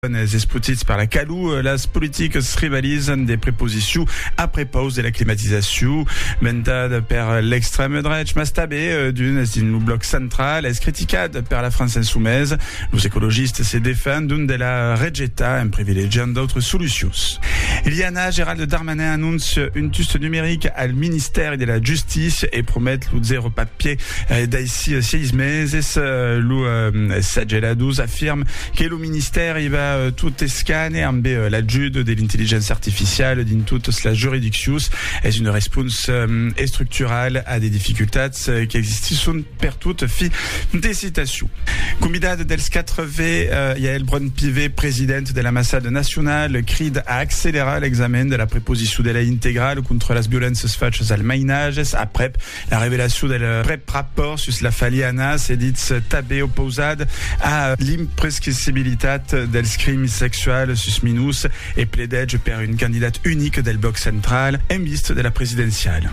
Enes espotits per la calor, las politics rivalizan de preposiciu a prepaus de la climatizaciu, ventat per l'extrèm drech, mas tanben d'unes dins lo blòc central. Es criticat per la França insumesa. Los ecologistes se defendon de la rejetar en privilegiant d'autres solucions. Liana, Gerald Darmanin anóncia un tust numeric al ministèri de la Justícia e promet lo zèro papier daicí seis meses. Los sageladors afirman que lo. Ministèri va tot escane ambe l'ajut de l'intelligéncia artificiala dins totas las juridiccions. Es una responsa estructurala a de dificultats qu'existisson pertot. Fi de citacion. Convidat dels 4 V, Yaël Braun-Pivet, president de l'Ambassada Nacionala, crida a accelerar l'examen de la preposiçon de lei integrala contra las violéncias fachas al mainatges aprèp La revelacion del prèp rapòrt sus la faliana se ditz tanben opausat a l'imprescrissibilitat dels crims sexuals sus minors e pledètge per un candidat unic del blòc central en vista de la presidenciala.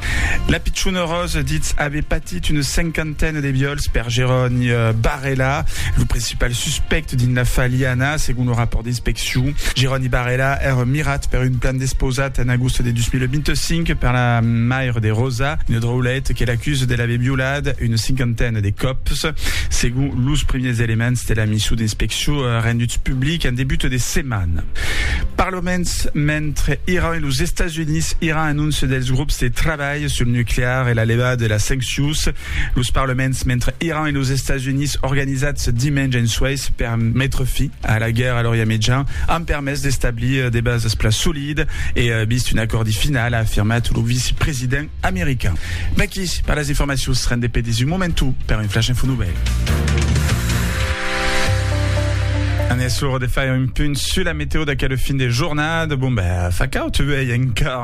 La pichona Rose ditz aver patit una cinquantena de viòls per Jeroni Barrela, lo principal suspèct dins la faliana, segon lo rapòrt d'inspeccion. Ciu, Jeroni Barela ère mirat per un plan despausat en agost de 2025 per la mair de Rosa, una dròulet que l'acuse de l'aver violat una cinquantena de còps, segon los primièrs elements de la mission d'inspeccion renduts publics en debut de setmana. Parloments, mentre Iran e los Estats Units, Iran anóncia dels grops de trabalh sul nuclear e la levada de las sanccions. Los parloments, mentre Iran e los Estats Units, organizats dimenge en Suèis per metre fi A la guèrra lor iametjan an permés d'establir de basas plan solidas e vist un acòrdi final, a afirmat lo vicepresident american. Vaqui per las informacions, rende pedís un momentu per un Flash Info Novèl. An es l'ora de faire un punt sus la meteo d'aquel fin de jornada. Bon ben, fa caud uèi encara.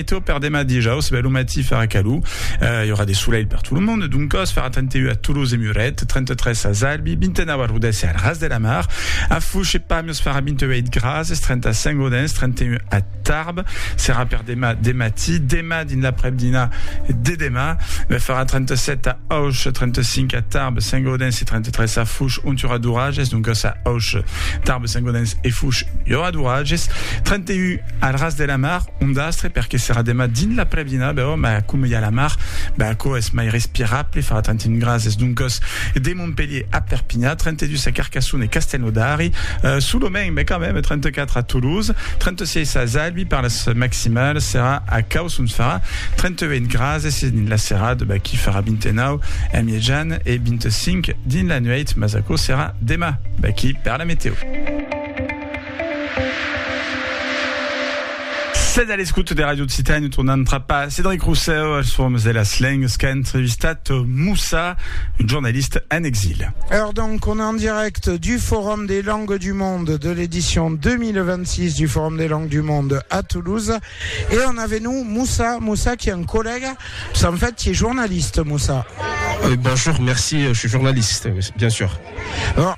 Météo per demà dijaus, bèl lo matí, farà calor, i aurà de solelh per tot lo mond, doncas farà 31 a Toulouse e Muret, 33 a Zalbi, 29 a Rodés e al Ras de la Mar, a Foish e Pamiers farà 28 grads, es 35 Audens, 31 a Tarbes, serà per demà de matí, demà dins l'aprèp-dinà de demà, farà 37 a Auch, 35 a Tarbes, 5 Audens e 33 a Foish, ont i aurà d'oratges, doncas a Auch, Tarbes, 5 Audens e Foish i aurà d'oratges, 31 Al ras de la mar, un dastre perque serà demà dins l'aprèp-dinar, bèu, mas coma i a la mar, bèu aquò es mai respirable, farà tant un gras, es doncas de Montpelhier a Perpinha, 32 a Carcassona e Castelnaudari, solament, mas quand même, 34 a Toulouse, 36 a Zalbi, per las maximals serà a Caus ont farà 38 gras, e se dins la serada, bèu, qu'i farà 29 a Mièjan e 25 dins la nuèit, mas aquò serà demà, bèu, qu'i per la metèo. Sètz a l'escota de Ràdio Occitània e tornam trapar Cédric Rosseu als formes de las lengas qu'a entrevistat Moussa, un jornalista en exil. Heure donc on est en direct du Forum des langues du monde de l'édition 2026 du Forum des langues du monde à Toulouse et on avait nous Moussa, Moussa qui est un collègue, parce qu'en fait tu es journaliste Moussa. Euh, bonjour, merci, euh, je suis journaliste, bien sûr. Alors,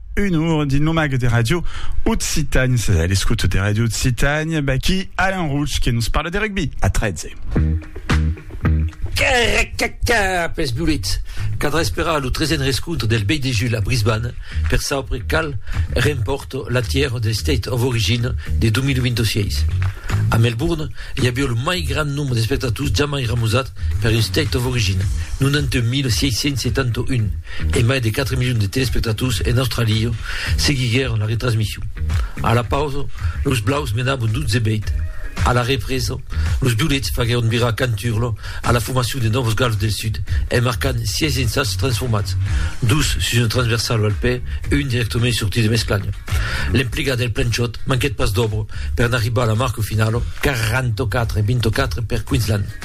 un our dins lo mag de ràdio Occitània. Sas a l'escouta de ràdio Occitània, baquí Alain Rouch que nos parla de rugbi a 13. Caracaca pels Violets! Cadrà esperar lo tresen rescontre del Bey de Jul a Brisbane per saupre qual rempòrt la tièr del State of Origin de 2026. A Melbourne, i aviá lo mai grand nombre d'espectators jamai remosat Per un State of Origin, 91.671 e mai de 4 milions de telespectators en Australia seguiguèron la retransmission. A la pausa, los blaus menabon 12 bèit. A la represa, los violets faguèron virar canturla a la formacion de Novos Gals del Sud en marcant 6 ensats transformats, dos sus una transversala al pè, un dirèctament sortit de m'esclanya. L'emplegat del Planchot manquèt pas d'òbra per n'arribar a la marca finala, 44 e 24 per Queensland.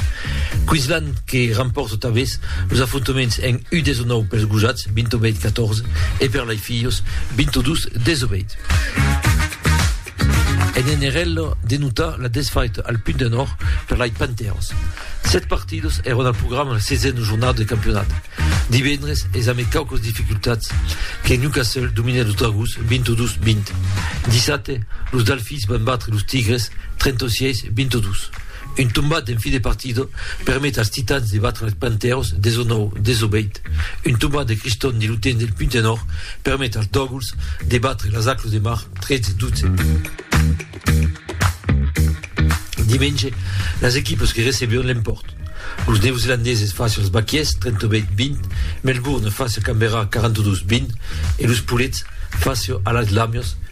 Queensland que rampòrta tanbés los afrontaments en U19 pels gojats, 28 14, e per lai filhos, 22 18. En NRL denota la desfaita al Punt de Nòrd per lai Panthers. Set partidas èron al programa la sesena jornada de campionat. Divendres es amé quaucas dificultats que Newcastle dominèt los Dragons 22 20. Dissabte, los Dalfis van batre los Tigres 36 22. Un tombat en fin de partida permet als Titans de batre als Panthèros 19, 18. Un tombat de Criston de l'Utens del Punt Enor permet als Dòguls de batre las Aclos de Mar 13, 12. Dimenge, las equipas que recebion l'empòrt. Los Neozelandeses face als Baquiers 38, 20, Melbourne face a Canberra 42, 20 e los Poulets face a las Lamias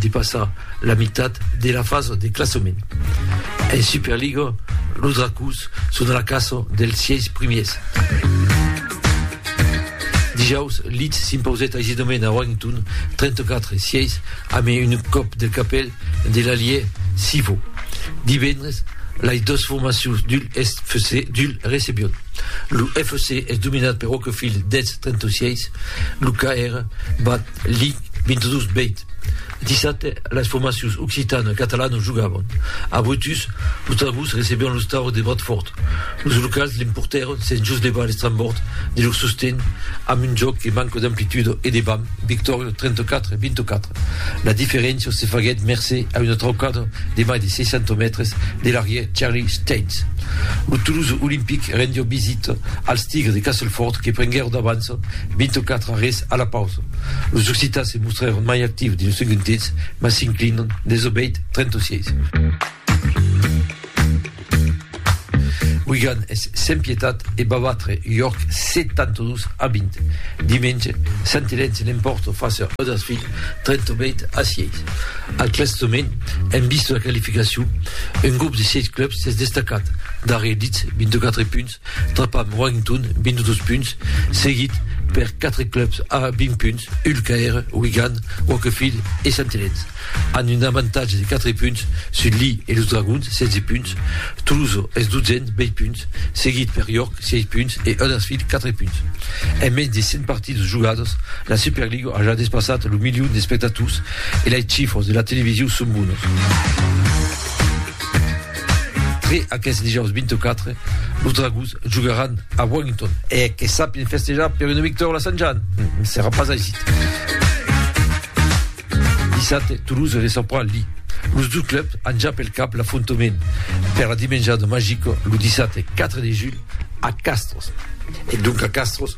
Depassa la mitat de la fasa de classament. En Superliga, los Dracòs son a la caça dels sièis primièrs. Dijaus, Leeds s'impausèt aisidament a Warrington, 34 a 6, amb un còp de capèl de l'alièr Sivo. Divendres, las dos formacions d'Hull Est FC d'Hull recebion. Lo FC es dominat per Wakefield, Dets, 36, lo KR bat Li 22 bèit dissabte las formacions occitana e catalana jogavan a Brutus, los Trabucs recebián los Taurus de Bradfòrt, los locals l'emportèron sens jos levar l'estrambòrd de lor sosten amb un jòc que manca d'amplituda e de vam, victòria 34 24. La diferéncia se faguèt mercé a una traucada de mai de 60 mètres de l'arrièr Charlie Staines. Lo Toulouse Olympic rendiá visita als Tigres de Castlefòrt que prenguèron d'avans 24 arrés a la pausa, los occitans se mostrèron mai actius dins lo segond temps, mas s'inclinan dens lo bèit 36. Wigan es sens pietat e va batre York 72 a 20. Dimenge, Sant Elen se l'empòrta fàcia Huddersfield 38 a 6. Al classament, en vista de la qualificacion, un grop de 6 clubs s'es destacat, darrièr Leeds, 24 punts, trapam Warrington, 22 punts, seguit per quatre clubs a 20 punts, Hull KR, Wigan, Wakefield e Sant Helens, amb un avantatge de 4 punts sus Leigh e los Dragons, 16 punts. Toulouse es 12n, 20 punts, seguit per York, 6 punts, e Huddersfield, 4 punts. En mens de 100 partidas jogadas, la Superliga a ja despassat lo milion d'espectators e lei chifras de la televisiu son bonas. Tre aqueth dijaus 24, los Dragons jogaràn a Warrington e que sapien festejar per una victòria a Sant Jan ne serà pas aisit. Dissabte, Toulouse recebrà Lille. Los dus clubs an ja pel cap l'afrontament per la dimenjada magica lo dissabte 4 de julh a Castres. E donc a Castres,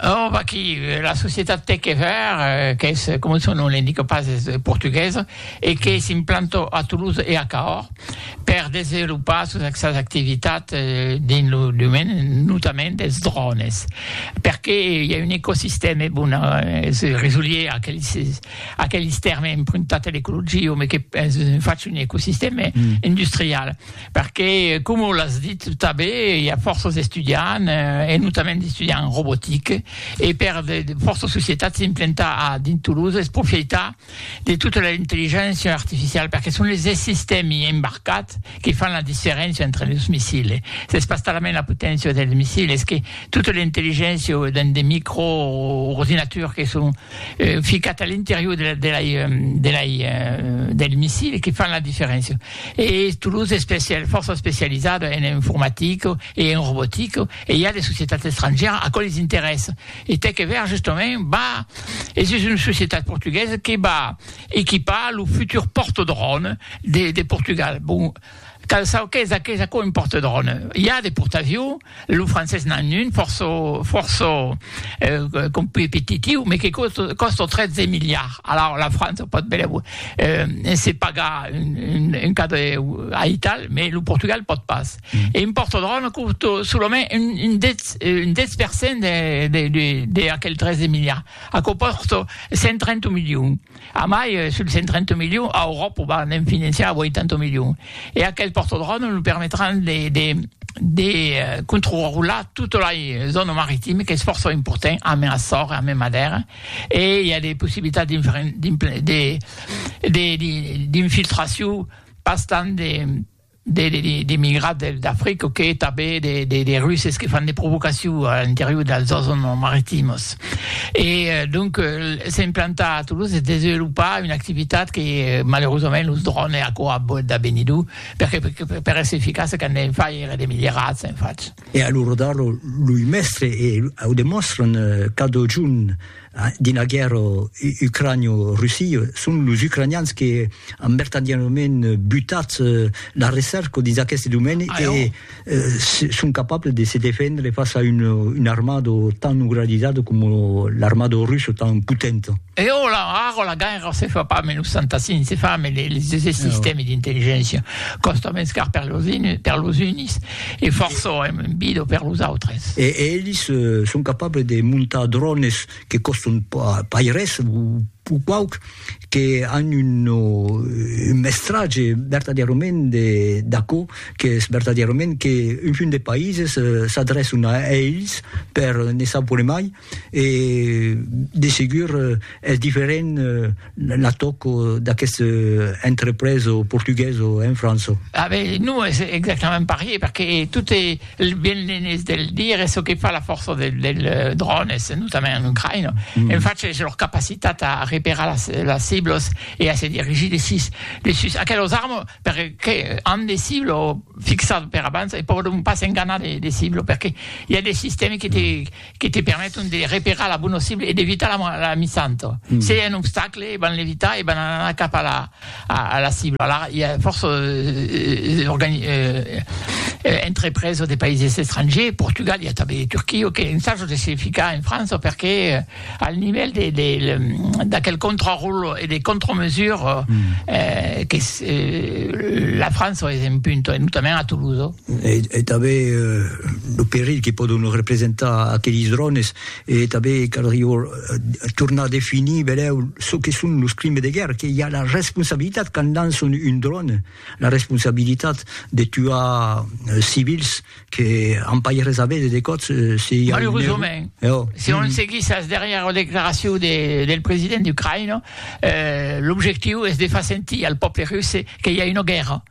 Oh, vaquí, la societat Tec e Vèr, qu'es, coma son nom l'indica pas, es portuguesa e que s'implanta a Toulouse e a Cahors per desenvolopar sos sas activitats dins lo domaine notament dels drònes, perque i a un ecosistèma, bon, es resolier a aqueles a aqueles tèrmes empruntats a l'ecologia, òme, que es fach un ecosistèma industrial. Perque, coma l'as dit tanben, i a fòrça d'estudiants, e notament d'estudiants en robotique, e per de fòrça societats s'implantar a dins Toulouse es profeitar de tota la intelligéncia artificiala, perque son es sistèmi embarcats que fan la diferéncia entre los missiles. S'es pas talament la poténcia dels missiles, es que tota l'intelligéncia dins de microordinaturs que son ficats a l'interior de la de la de la del missile que fan la diferéncia. E Toulouse es especial, fòrça especializada en informatica e en robotica, e i a de societats estrangèras a quò les interessa. E tec e ver justament, va, e sus una societat portuguesa que va equipar lo futur portadròn de Portugal. Bon, cal saber qué es aquò un portadròn. I a de portavions, Lo francés n'an un fòrça, fòrça competitiu, me que còsta 13 miliards. Alara la França pòt benlèu se pagar un cadre aital, me lo Portugal pòt pas. E impòrta d'arròna quota solament un 10, un 10 per cent de aquel 13 miliards. Aquò pòrta 130 milions. Amai, sul 130 milions, a Euròpa va ne'n financiar 80 milions. E aquel pòrtodròme lo permetràn de, de, de controrular tota la zòna maritima, qu'es fòrça important, amé Açor e amé Madèra, e i a de possibilitats d'infiltracion pas tant de d'emigrats d'Africa que tanben de Russes que fan de provocacion a l'interior dels zòns maritimos. E donc s'es implantat a Toulouse, s'es desvelopar una activitat que malerosament los drònes e aquò a boet de benir dur, perque per èsser eficace qu'an de far èra de milierats en fach. E a l'ora d'ara loi mèstres e au demòstran cada jorn. Dins la guèrra ucranio-russia, son los ucranians que an vertadièrament butat la recerca dins aqueste domeni e son capables de se defendre fàcia a una armada tan organizada coma l'armada russa tan potenta. E ara, ara la guèrra se fa pas mai los fantassins, se fa mai los sistèmes d'intelligéncia. Còsta mens car per los unis. E fòrça èm un bido per los autres. E elis son capables de montar drònes que còstan pas res, o pauc, que an un mestratge vertadièrament d'aquò qu'es vertadièrament qu'un punt de païses s'adrèçan a elis per ne saupre mai, e de segur es diferent la tòc d'aqueste entrepreso portugueso en França. Ah ben, non es exactament parier, perque tot e ben l'enes de le dire, es çò que fa la fòrça del drònes, notament en Ucraïna, en fach es lor capacitat a reperar las ciblos e a se dirigir de sus de sus aquelos armes, perque an de ciblo fixat per abans e pòdon pas enganar de ciblo, perque i a de sistèmes que te que te permeton de reperar la bona cible e d'evitar la missanta. Se i a un obstacle, van l'evitar e van anar cap a la cibla. Alara, i a fòrça entrepreses de païses estrangers, Portugal, i a tanben de Turquia, que ensajan de se ficar en França perque al nivèl d'aquel contraròtle e de contramesures que la França es en punta, e notament a Toulouse. E tanben lo perilh que pòdon representar aqueles drònes, e tanben caldrió tornar a definir benlèu çò que son los crimes de guèrra, que i a la responsabilitat quand lançon un dròne, la responsabilitat de tuar civils que an pas res a véder de còps se i a un error. Malerosament, si on seguís as darrièras declaracions del president ucraïnés, l'objectiu es de far sentir al pòble russe que i a una guèrra.